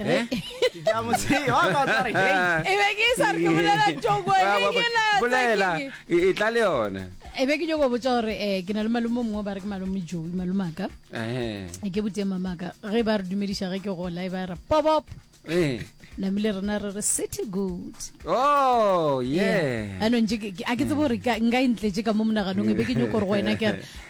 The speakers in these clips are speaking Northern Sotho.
Eh? e be ke sa re ke bolela toko e be ke na bolela e tla le yona e be ke nyoko botsa gore um ke na le malome mongwe ba re ke malome joe malome aka e ke botse mamaka ge ba re dumediša ge ke gola e ba re pobop namile rena re re city good oh yeah anong a ke tsebo gore nka e ntletše ka mo monaganong e be ke nyoko gore go wena ke re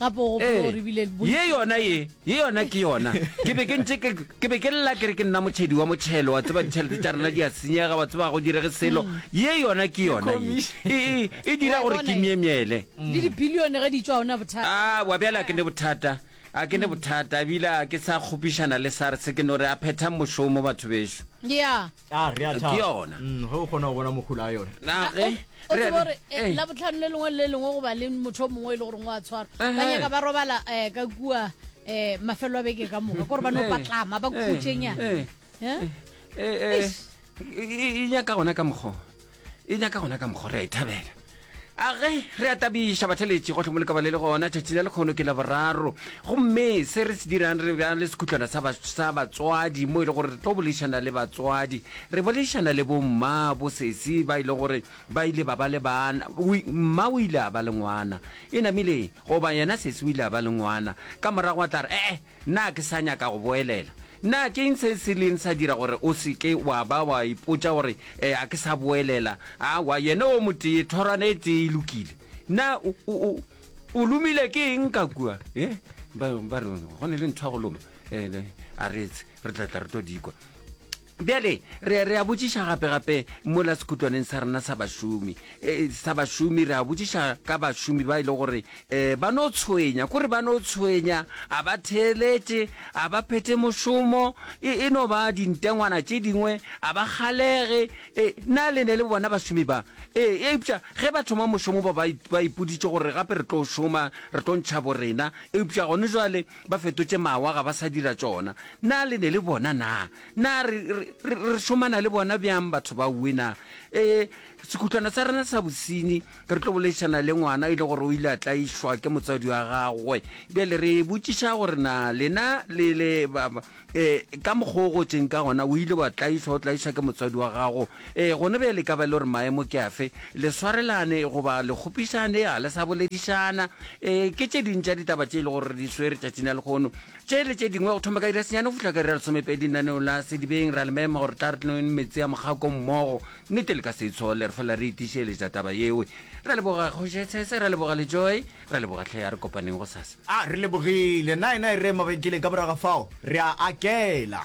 gape o gopola gore ebile bo- ye yona ye ye yona ke yona ke be ke ntse ke ke be ke lla ke re ke nna motšhedi wa motšhelo wa tseba ditšhelete tša rena di a senyega wa tseba ga go direge selo ye yona ke yona ye e, e, e dira Wa gore bona ke ye? myemyele le dibilione ge di tšwa gona bothata a wa bjale a ke ne bothata a ke ne bothata ebile a ke sa kgopišana le sars ke no re a phethang mošomo batho bešo ya a re a Ke thaba yona. Mm, ge o kgona go bona mokgula a yone na ge Eh, o re- tseba gore eh, eh, labotlhano le lengwe le le lengwe goba le motho o mongwe e le goreng o a tshwarwa ba Ehe. nyaka ba robala um ka kua um mafelo a beke ka moka kore ba no Eh, patlama ba eh, khutšenyana eh, Eh? eh, eh, e e nyaka gona ka mokgwa e nyaka gona ka mokgwa re a e thabela age re a tabiša batheletši go tlhomoleka ba le le gona tšatši la lekgono ke la boraro gomme se re se dirang re bja le sekhutlwana sa batswadi mo e le gore re tlo bolešana le batswadi re bolešana le bomma bosesi ba e le gore ba ile ba ba le bana mma o ile a ba le ngwana e namile goba yena sesi o ile a ba le ngwana ka morago a tla re ee Na ke sa nyaka go boelela? Na ke'ng se se ileng sa dira gore o se ke wa ba wa ipotša gore, Ee, ga ke sa boelela? Aowa, yena o motee, thorwana e tee e lokile. Na o, o, o, o lomile ke eng ka kua? E? Ba, ba re, Go ne le ntho ya go loma. E, a re etse, re tla tla re tlo di kwa. Bjale, re, re a botšiša gape, gape mola sekhutlwaneng sa rena sa bašomi, e, sa bašomi, re a botšiša ka bašomi ba e le gore e, ba no tshwenya, kore ba no tshwenya, a ba theeletše, a ba phethe mošomo, e, e no ba dintengwana tše dingwe, a ba kgalege, e, na le ne le bona bašomi ba? E, eupša ge ba thoma mošomo ba, ba, ba ipoditše gore gape re tlo šoma, re tlo ntšha borena, eupša gone jwale ba fetotše mawa, ga ba sa dira tšona. Na le ne le bona na? Na re, re, re, re šomana le bona bjang batho ba uwe na? E, sekhutlwana sa rena sa bosinyi, re tlo boleišana le ngwana e le gore o ile a tlaišwa ke motswadi wa gagwe. Bjale re botšiša gore na lena le, le ba, ba, e, ka mokgwa o gotšeng ka gona, o ile wa tlaišwa, o tlaišwa ke motswadi wa gago. E, gona bjale ka ba le gore maemo ke afe, le swarelane goba le kgopišane, ga le sa boledišana. E, ke tše ding tša ditaba tše e le gore re di swere tšatšing la lekgono. Tše le tše dingwe go thoma ka iri ya senyane go fihla ka iri ya lesomepedi lenaneo la Sedibeng. Re a le mema gore tla re tlonweng meetse ya mogako mmogo. Nnete le ka se e tshole, re fela re itišeletša taba yewe. Re a leboga Kgoši Etsese, re a leboga le Joy, re a leboga hle. A re kopaneng gosasa. A re lebogile. Nae nae rre Mabenkele ka morago ga fao re a akela.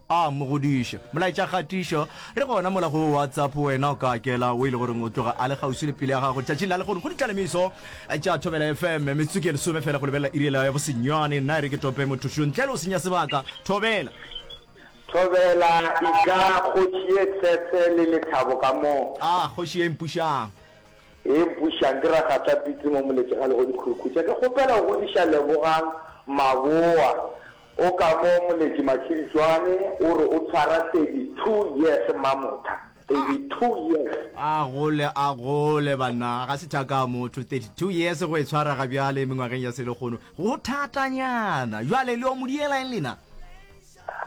A mo godiše. Molaetša kgatišo, Re gona mola go WhatsApp, wena o ka akela wo e le goreng o tloga a le kgauswi le pelo ya gago tšatšing la lehono go ditlalemiso tša Thobela FM. Metsotso ke lesome fela go lebelela iri ya bosenyane. Nna e re ke tope mothošo ntle le go senya sebaka. Thobela! Thobela, Eja kgoši ye tsetse le lethabo ka mo. A kgoši ye e mpušang. E mpušang, ke Ragatapitse mo Moletšegalegodikgurukhutsha. Ke kgopela go godiša Lebogang Maboa O ka mo Moletši Matshiritšoane o re o tshwara 32 years Mamotha, 32 years. A gole a gole banna, ga se thaka ya motho, 32 years go e tshwara ga bjale mengwageng ya selehono go thatanyana. Bjale le yo mo diela eng lena?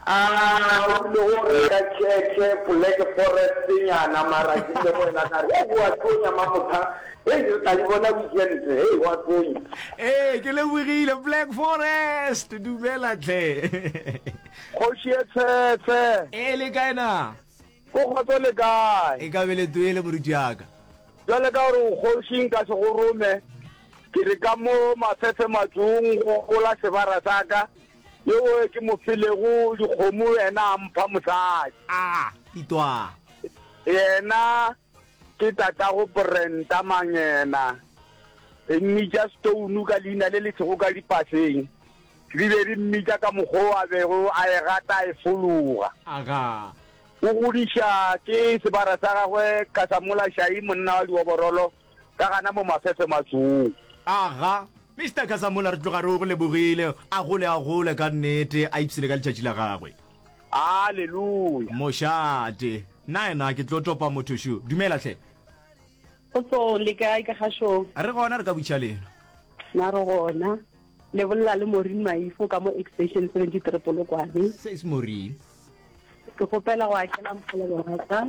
A o bile wo reka church, poleke forest nyana mara ke bile go ena ka re, Ewa Tonya Mamotha Hei re tla di bona diente, hei wa tsenya. Ee, ke lebogile Black Forest, dumela tle. Kgoši e tshwetshe. E le kae na? Go kgotso le kae? E ka be le toele moruti ya ka. Jwale ka gore o kgoši nka se go rome, ke re ka mo mafefe matsong go gola sebara sa ka, yo o ke mo filego dikgomo yena a mpha mosadi. A, itwa. Yena. Ke tatago Brenda Mangena. Re mmitša Stone ka leina le le sego ka dipaseng. Re be re mmitša ka mokgwa o a bego a e rata a e fologa. Agaa. O godiša ke sebara sa gagwe ka sa Molashai, monna wa dioborolo, ka gana mo Mafefe Matsong. Agaa. Mister Kasamola re tloga re o go lebogile. A gole, a gole ka nnete, a ipsele ka letšatši la gagwe. Aleluya! Mošate, Nnaena ke tlo topa motho šo. Dumela hle. Kgotsong, le kae ka gašong? Re gona, re ka butša lena. Na re gona. Le bolela le Maureen Maifo ka mo extension 73 Polokwane. Says Maureen. Ke kgopela go akela mokgolo wa ka.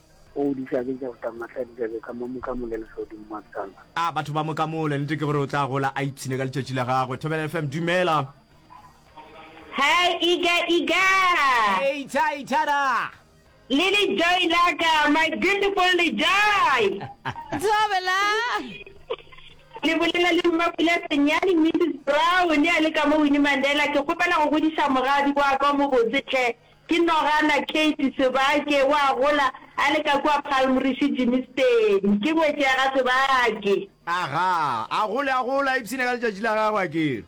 O di hlabetša go tama mahla dibjalo ka mo mokamole lehlodimo mabjala. A batho ba mokamole, nete ke gore o tla gola a ipshine ka letšatši la gagwe. Thobela FM, dumela. Hi Iga Iga. Hey Tha Ithada. Le Lejoy la ka, my beautiful Lejoy. Thobela. Le bolela le Mmapula Senyane, Mrs Brown, a le ka mo Winnie Mandela. Ke kgopela go godiša moradi wa ka o mobotse tlhe. Ke nogana Kate Sebake, o a gola a le ka kua Palm Rishi Jimisteni. Ke ngwetši ya ga Sebake. Aga, a gole a gola a ipshina ka letšatši la gagwe, a ke re.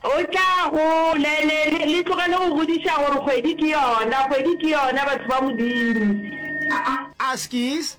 O tla go, le, le, le, le tlogele go godiša gore kgwedi ke yona, kgwedi ke yona, batho ba Modimo. A, a, askies,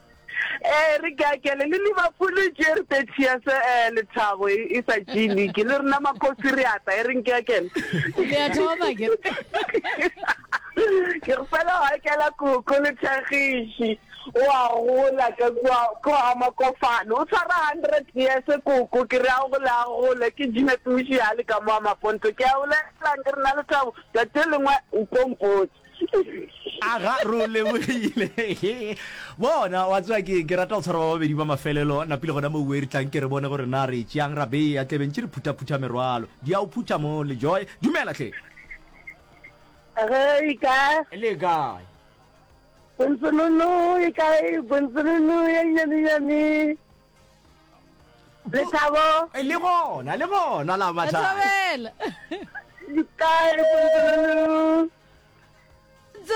Eh re ke akele le Liverpool e tšere 30 years eh lethabo e e sa tšee league le rena makosi re ata e reng ke akele Le a thoma ke. ke re fela wa kela koko le tlhagiši o a gola ka kwa ko a makofane o tshwara 100 years koko ke re a gole a gole ke jina tuši ya le ka mo a maponto ke a o lelang ke re na lethabo tsatsi le lengwe o tlo mpotsa aga re o lebogile bona wa tswa ke ke rata go tshwara ba babedi ba mafelelo napile gona mo uwe re tlang ke re bone gore na re tšeang ra beya tlebeng tše re phuthaphutha merwalo di a o phutha mo le joy dumela tle Re ka le kae bontsolono e kae bontsolono ya nyane nyane lethabo eh, le gona le gona la matlhabela dikae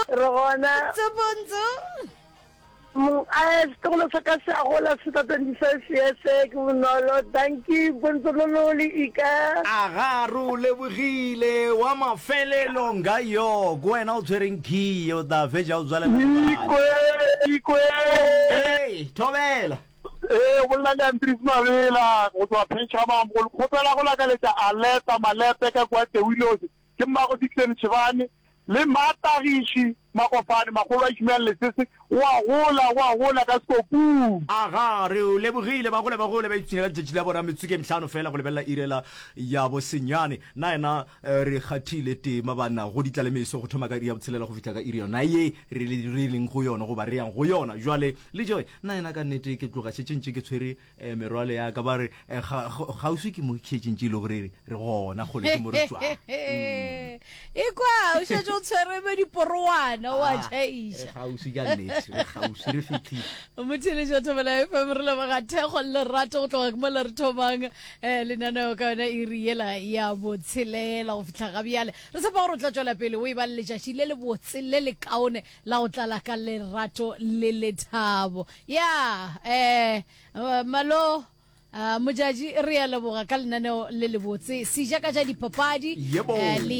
re gona tsopontso setogolo sa ka se agola se tsa twenty five years ke bonolo danki bontsololo le ika aga re o lebogile wa mafelelo nga yo ko wena o tshwereng key o tla fetsa o tswalelaikwe Thobela. Ee, o bolela le Andries Mabela go tšwa Phetšhamamo. Go le kgopela go lakaletša Aleta Malepe ka kua Tewilosi, ke mmago Dickson Tšhibane, le mma Tagiši Makofane, makgolo a Ishmael Lesese, o a gola, o a gola ka Sekopung. Aga, re o lebogile. Ba gole, ba gole, ba ipshinela letšatši la bo Rametsuke, mhlano feela go lebelela iri la ya bosenyane. Na yena. re kgathile tema banna go ditla le meso go thoma ka iri ya botshelela go fihla ka iri yona ye re le re leng go yona goba re yang go yona jwale le joy nna yena ka nnete ke tloga šetše ntše ke tshwere eh, merwalo ya ka ba re eh, ga- ga- kgauswi ke mo šetše ntše e le gore re re gona kgole ke mo re tswang e kwa o šetse o tshwere be diporowana wa Ah, tšhaiša e kgauswi ka nnete re kgauswi re fitlhile motheletša thobela fm re leboga thekgo le lerato go tloga ke mola re thomang um lenaneo ka yona e re yela ya botshelela go fitlha ga bjale re tshepa gore o tla tswela pele o e ba le letšatši le le botse le le kaone la go tlala ka lerato le lethabo ya um malo uh, mojaji re ya leboga ka lenaneo le lebotse sejaka ja dipapadi Yebo. eh, le